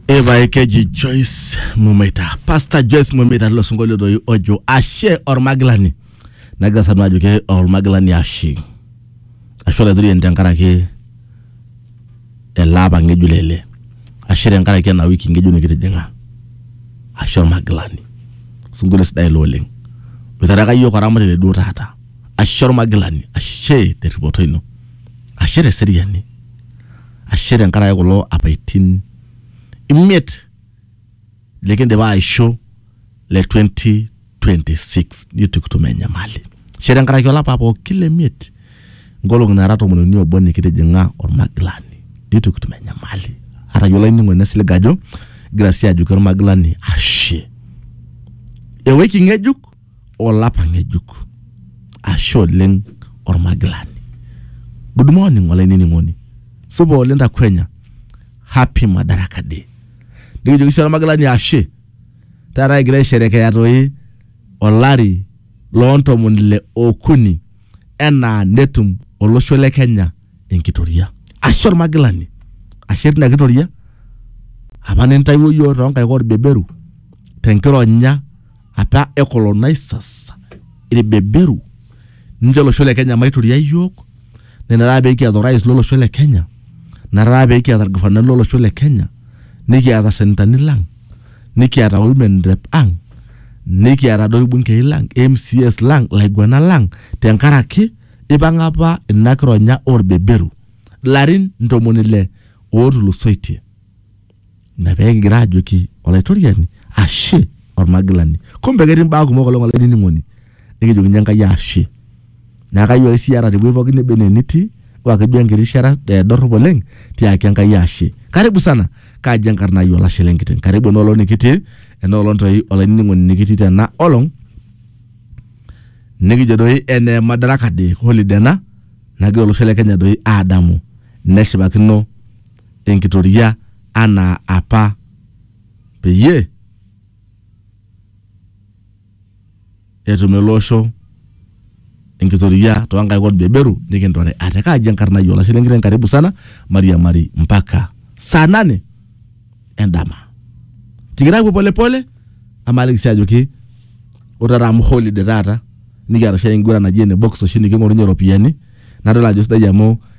ebaekeji joyce mumeita pastor joyce mumeita tilo sinkolio doi ojo ashe ormagilani nagira sanu ajo ke ormagilani ashe ashe olaitoriani tenkaraki ele apa ng'ejuk lele ashe tenkaraki ena wiki ng'ejuk nikitijing'a ashe ormagilani sinkolio sidai ilo oleng boitharaka yiok oramatare duo taata ashe ormagilani ashe terripoto ino ashe teseriani Ashe tenkaraki kulo apaitin imiet likindipa aisho le 2026 nitukitum enyamali. Ashe tenkaraki olapa pooki le miet nkolong'i naara tomon uni obo nikitijing'a olmagilani nitukitum enyamali. Atayiolo olainining'oni naisilig ajo igira sii ajoki olmagilani ashe. Ewiki ng'ejuk. olapa ng'ejuk ashe oleng ormagilani good morning olainining'oni supa oleng takwenya happy madaraka day nikijoki sii ormagilani ashe taata egira aisherekea toi olari loontomoni ile okuni enaa netum olosho le kenya enkitoria ashe ormagilani ashe tina kitoria apa nintaiwuo yiok tonkaik orbeberu tenkironya apa e colonizers irbeberu ninche olosho le Kenya maituria iyiook naa ina taata pekiata orais lolosho le Kenya ina taata pekiata irgavanani lolosho le Kenya nikiata isenetani lang nikiata women rep ang nikiata doi irbungei lang MCAs lang ilaiguanak lang tenkaraki ipang'a apa ina kironya orbeberu ilarin ntomoni ile otulusoitie. Ina pee kigira aajoki Olaitoriani ashe olmagilani. Kumbe ketii imbaa kumok oleng olainining'oni nikijokinye Enkai ashe. Neeku kayieu ake siyie ata tewueji pooki neba enaa enitii ata ake duo enkiti rishata dorrop oleng tiaki Enkai ashe. Karibu sana, kaji enkarna ai olashe lenkiteng. Karibu ena olong nikitii, ena olong toi olainining'oni nikitii tena olong nikijo doi ene Madaraka Day, holiday ena nagira olosho le Kenya doi aadamu neshipakino enkitoria anaa apa peyie etum ele osho enkitoria too nkaik olbeberu nikintore ate. Kaaji enkarna ai olashe lenkiteng karibu sana mairiamari mpaka saa nane endama. Kigira aapuo pole pole amu aaliki sii ajoki ore taata amu holiday taata nikiata oshi enkiguran naji ene box oshi niking'orunye iropiyiani nadol ajo sidai amu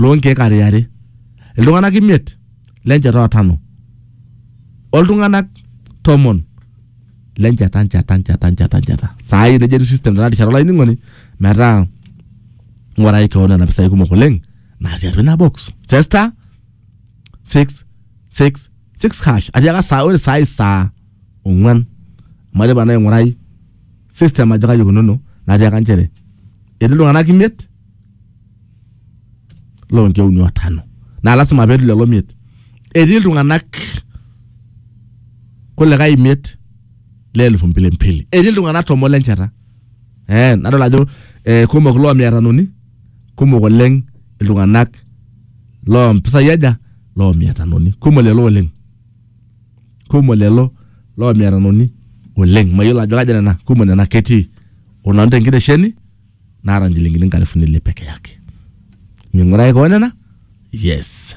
loo nkeek are are, iltung'anak imiet le nchata o tano, oltung'anak tomon le nchata nchata nchata nchata nchata. Saa hii neija etiu system tena rishata olainining'oni metaa ing'urai keon nena pisai kumok oleng natii atua ina box. Chester 666 hash atiaka saa ore saa hii saa ong'wan amu aidipa naa aing'urai system ajo kaji ikununo natiaka nchere etii iltung'anak imiet loonki uni o tano naa lasima peetii lelo miet etii iltung'anak kulikae imiet le elfu mbili mbili etii iltung'anak tomon lenchata eh, nadol ajo eh, kumok loo mia tanoni kumok oleng iltung'anak loo mpisai aja loo mia tanoni kumok lelo oleng kumok lelo loomiatanoni oleng. Mayiolo ajo kaja nena kumok nena ketii o nanu tenkitesheni naata nchilingini nkalifuni ile peke yake. Ming'uraki koon nena? Yes.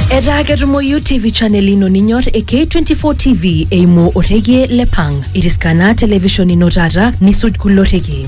Etaa ketumoyu TV channel ino ninyor e K24 TV eimu orrekie le Pang. Iriskana television ino taata nisuj kulo rrekie.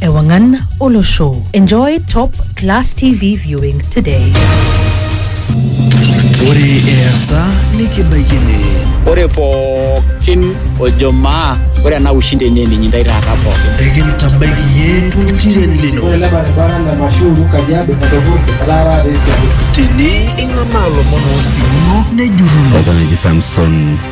Ewangan Olosho. Enjoy top class TV viewing today. Ore easa nikibaikini. Ore pookin ojo maa ore ena ushindi enye ninyi ndai taata pookin. Ekintabaiki yie tuntiren lino. Ore ele baribara le Mashuru Kajiado etopurte etaa taata esiadi. Tini ing'amaa lomon oosimuno nejurruno. Eton eji Samson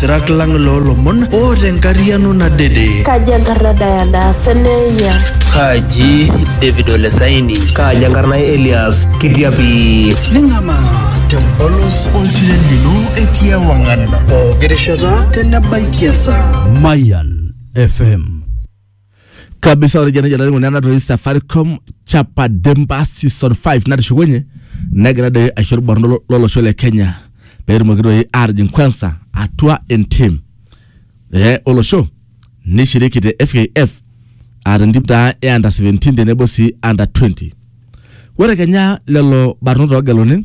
Sirak lang loolomon oota enkariano nadede. Kaji enkarna Diana Seneia? Kaji David Ole Saini? Kaji enkarna Elias Kitiapi? Ning'amaa tempolos oltiren lino etii ewang'an pooki rishata tenebaiki esaa. Mayan FM kabisa ore jana jana ngone natoi Safaricom chapa demba season 5 natishukunye negira doi aisho irbarnot lolosho le Kenya peetumoki doi aatijing kwanza atua entim eh, olosho nishiriki te FKF aa tentim taa e under 17 tenebo sii under 20 ore kenya lelo barnot oogeluni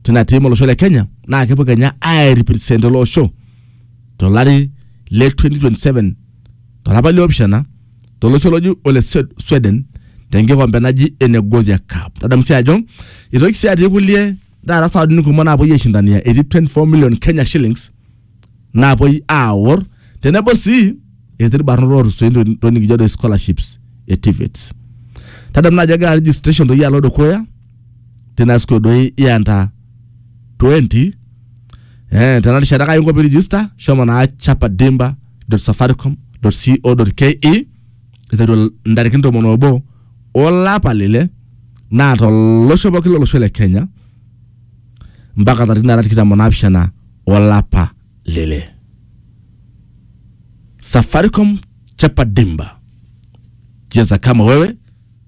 tina tim olosho le Kenya naa kepuo kenya airipresent ele osho tolari le 2027 tolapa liopishana tolosho loji ole Swe- Sweden tenkikombe naji ene Gothia Cup. Tadamu sii ajo itoki sii atii kulie taata sawadini kumok naapuoi aishindania etii 24 million Kenya shillings naapuoi aawor tenebo sii etii irbarnot ootusoitie ntokitin- ntokitin nikijo doi scholarships e TVETs. Tadamu naajo egira registration doi alo dukuya tina siku doi ianta 20 eh, tena rishata kainko pee register shomo naa chapa dimba safaricom co ke iteru ntarikini tomon obo olapa lile naa tolosho pooki lolosho le kenya mpaka tarikini naara tikitam onaapishana olapa lile safaricom chapa dimba cheza kama wewe